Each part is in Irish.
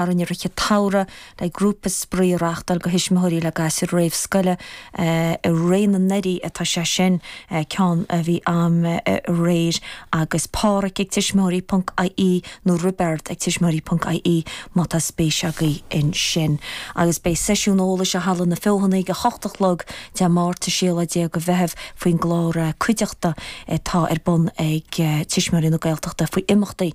a rinne Rike Taura le grúpa spraoi a reáchtáil do thuismitheoirí le gasúir réamhscoile. I Réidh na nDoirí atá sé sin ceann a bhí am aréir agus Páraic ag tuismitheoirí ponc ie nó Roibeard ag tuismitheoirí ponc ie má tá spéis agaibh ansin. Agus beidh seisiún eolais i Halla na Feothanaí ag 8 a chlog Dé Máirt 16ú de Mheitheamh faoin gclár Cuideachta atá ar bun ag Tuismitheoirí na Gaeltachta faoi imeachtaí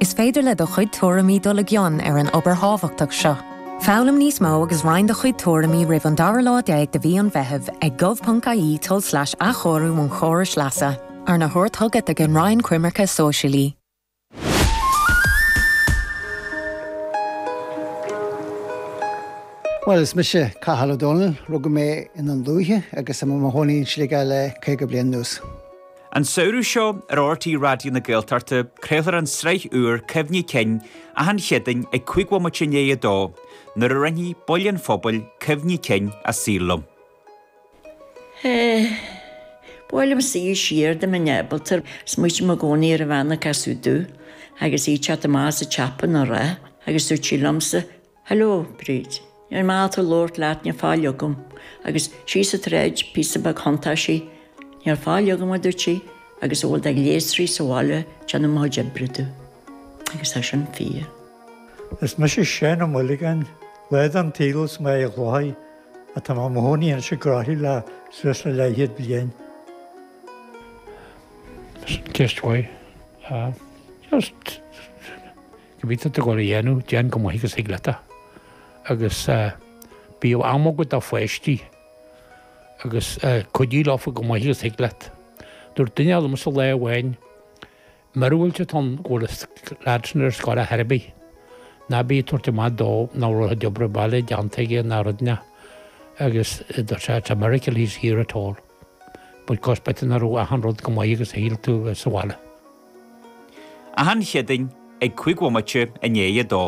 Is féidir le do chuid tuairimí dul i gcion ar an obair thábhachtach seo. Foghlaim níos mó agus roinn do chuid tuairimí roimh an dara lá déag de mhí an Mheithimh ag gov.ie tulslais athchóiriú an chórais leasa. Arna thabhairt chugat ag an Roinn Coimirce Sóisialaí. Bhuel, is mise Cathal Ó Dónaill. Rugadh mé i nDún Lúiche agus tá mé i mo chónaí in Sligeach le caoga bliain anuas. An samhradh seo, ar RTÉ Raidió na Gaeltachta, craolfar an tsraith úr Cuimhní Cinn achan Chéadaoin ag 5 bhomaite i ndiaidh a dó, nuair a roinnfidh baill an phobail cuimhní cinn a saoil liom. Ba mhaith liomsa dul siar dá mbeinn ábalta air, smaoitím i gcónaí ar an bhean a casadh domh, agus í ag teacht amach as an tsiopa lá, agus dúirt sí liomsa, Hello, Bríd. Níl mé ábalta labhairt leat, níl faill agam. Agus síos an tsráid píosa beag thiontaigh sí, níl faill agam, a dúirt sí, agus a bhfuil de ghléasraí sa bhaile ag déanamh mo chuid oibre domh. Agus tá sin fíor. Is mise Seán Ó Maolagáin, lá den tsaol as Mín an Chladaigh ach tá mé i mo chónaí anois i gCroithlí le suas le leathchéad bliain. Sin ceist mhaith. Just. Cibé tá tú ag dul a dhéanamh, déan chomh maith agus thig leat é. Agus bíodh am agat do pháistí agus cuidigh leofa chomh maith agus thig leat. Dúirt duine liomsa lá amháin, Míorúilt atá ann go bhfuil an lad sin ar scoil ar chor ar bith. Ná bí ag tabhairt amach dó nach raibh a chuid oibre baile déanta aige ná rudaí. Agus dúirt sé, It's a miracle he's here at all. Because b'fhéidir nach raibh achan rud chomh maith agus shíl tú a bheith sa bhaile. Achan Chéadaoin ag cúig bhomaite i ndiaidh a dó.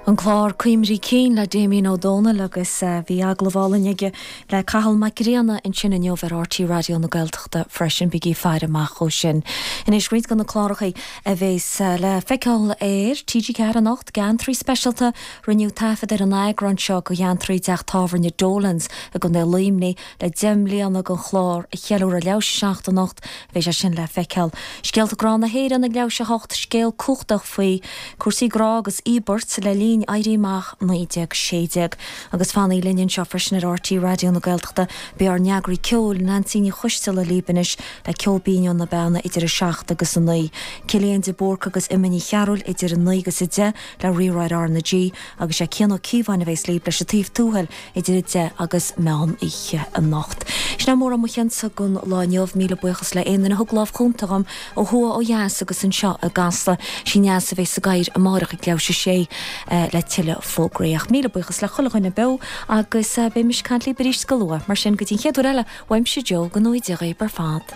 An clár Cuimhní Cinn le Damien Ó Dónaill agus bhí agallamh álainn aige le Cathal Mac Grianna ansin inniu ar RTÉ Raidió na Gaeltachta freisin, bígí ag faire amach dhó sin. Anois roinnt de na clárachaí. a bheas le feiceáil ar TG4 anocht, Geantraí Speisialta, Rinneadh taifead ar an eagrán seo de Gheantraí i dteach tábhairne Dolan's i gContae Luimnigh le deich mbliana den chlár a cheiliúradh leathuair tar éis a seacht anocht, beidh sé sin le feiceáil. Scéalta Grá na hÉireann ag leathuair tar éis a 8 Scéal cumhachtach faoi cúrsaí grá agus íobairt le linn Éirí Amach 1916. Agus fanaigh linn anseo freisin ar RTÉ Raidió na Gaeltachta, beidh ár n-eagraí ceoil, Neansaí Ní Choisdealbha, libh anois, le ceol binn ó na beanna idir 7 agus 9, Cillian de Búrca agus Emma Ní Chearúil idir 9 agus 10 le Reacaireacht ar R na G, agus sé Cian Ó Cíobháin a bhéas lib leis An Taobh Tuathail idir 10 agus meán oíche anocht. Sin é mórán mo chuidse don lá inniu. Míle buíochas le aon duine a thug lámh chúnta dhom ó thuaidh ó dheas agus anseo i gCasla. Sí Neasa a bhéas san aer amáireach ag leathuair tar éis a 6 le tuilleadh fógraí. Ach míle buíochas le chuile dhuine beo Agus beidh mise ag caint libh arís go luath. Mar sin, go dtí an chéad uair eile, uaimse Joe, go n-éirí go geal libh ar fad.